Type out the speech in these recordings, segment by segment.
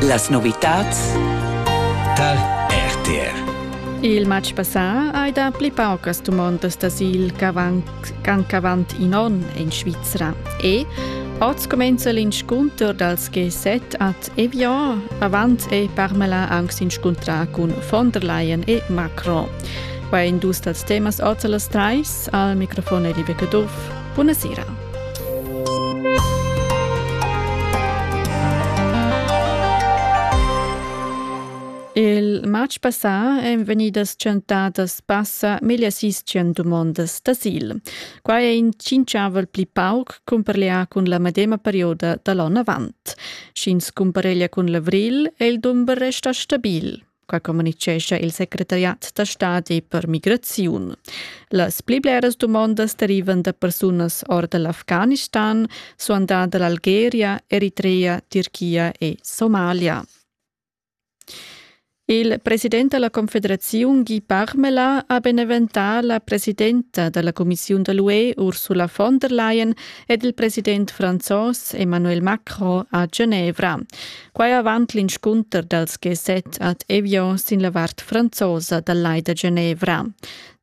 Las novitads tar RTR. Il matg passà hai dà pli paucas dumondas d'asil ch'avant in onn en Svizra e Oz comenza l'inscunter dals G7 ad Evian. Avant è Parmela anc s'inscuntrà cun von der Leyen e Macron. Quai è in dus dals temas oz a las trais. Al microfon è Liebe Caduff. Buna sera. Il matg passà èn vegnidas tschentadas passa meglio sis tschient dumondas d'asil. Quai è in tschinchavel pli pauc cumpareglià cun la medema perioda da l'onn avant. Sch'ins cumpareglia cun l'avrigl, è il dumber restà stabil. quai communitgescha il secretariat da stadi per migraziun. Las pli bleras dumondas derivan da persunas or da l'Afghanistan, suandà da l'Algeria, Eritrea, Turchia e Somalia. Il president della Confederazione Guy Parmela ha beneventà la presidenta della Commissione dell'UE Ursula von der Leyen ed il president francés Emmanuel Macron a Genevra. Quai avant l'inscunter dals G7 ad Evian sin la vart franzosa dal Lai da Genevra.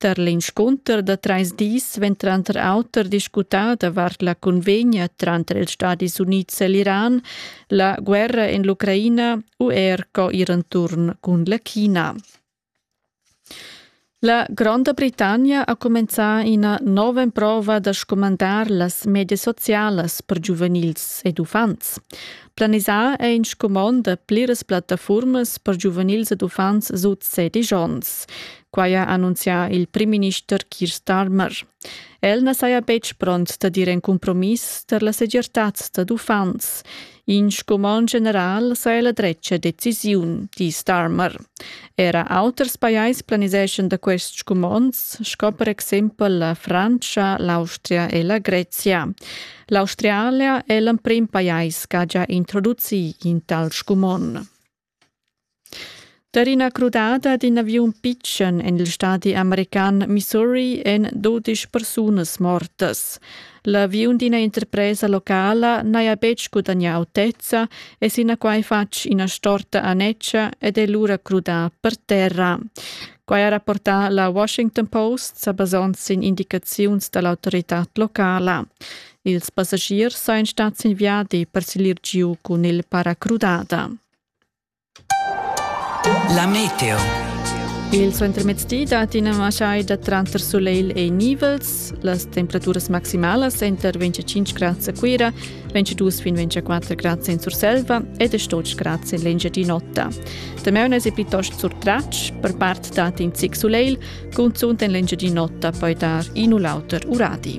Tar l'inscunter da trais dis vegn tranter auter discutà davart la convegna tranter ils Stadis Unids e l'Iran, la guerra en l'Ucraina u er co ir enturn cun la China. La Gronda Britannia ha cumenzà ina nova emprova da scumandar las medias socialas per giuvenils ed uffants. Planisà è in scumond da pliras plattafurmas per giuvenils ed uffants sut sedisch onns. Quai ha annunzià il primminister Keir Starmer. El na saja betg pront da dir in cumpromiss tar la segirtad dad uffants. In scumond general sa ella dretga decisiun, di Starmer. Era auters pajais planiseschan da quests scumonds, sco per exempel la Frantscha, l'Austria e la Grezia. L'Australia è l'emprim pajais ch'ha già introducì in tal scumond. Per ina crudada d'in aviun pitschen en il stadi american Missouri èn dudesch persunas mortas. L'aviun d'ina interpresa locala n'haja betg gudagnà autezza e sinaquai fatg ina storta annetscha ed è lura crudà per terra. Quai ha rapportà la Washington Post sa basond sin indicaziuns da l'autoritad locala. Ils passagiers sajan stads sin viadi per siglir giu cun il paracrudada. La meteo. Il suentermezdi dat ina masai da tranter sulegl e nivels. Las temperaturas maximalas enter 25 grads a Cuira, 22 fin 24 grads in Surselva e 18 grads in l'Engiadin'Ota. Temeunas è piuttosto surtratg, per part dat in zic sulegl, cunzunt en l'Engiadin'Ota poi dar in u l'auter uradi.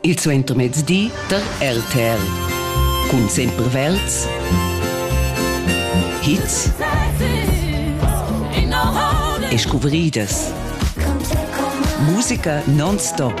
il suentermezdi der RTL cun sempre Welts Hits e scuvridas Musica non-stop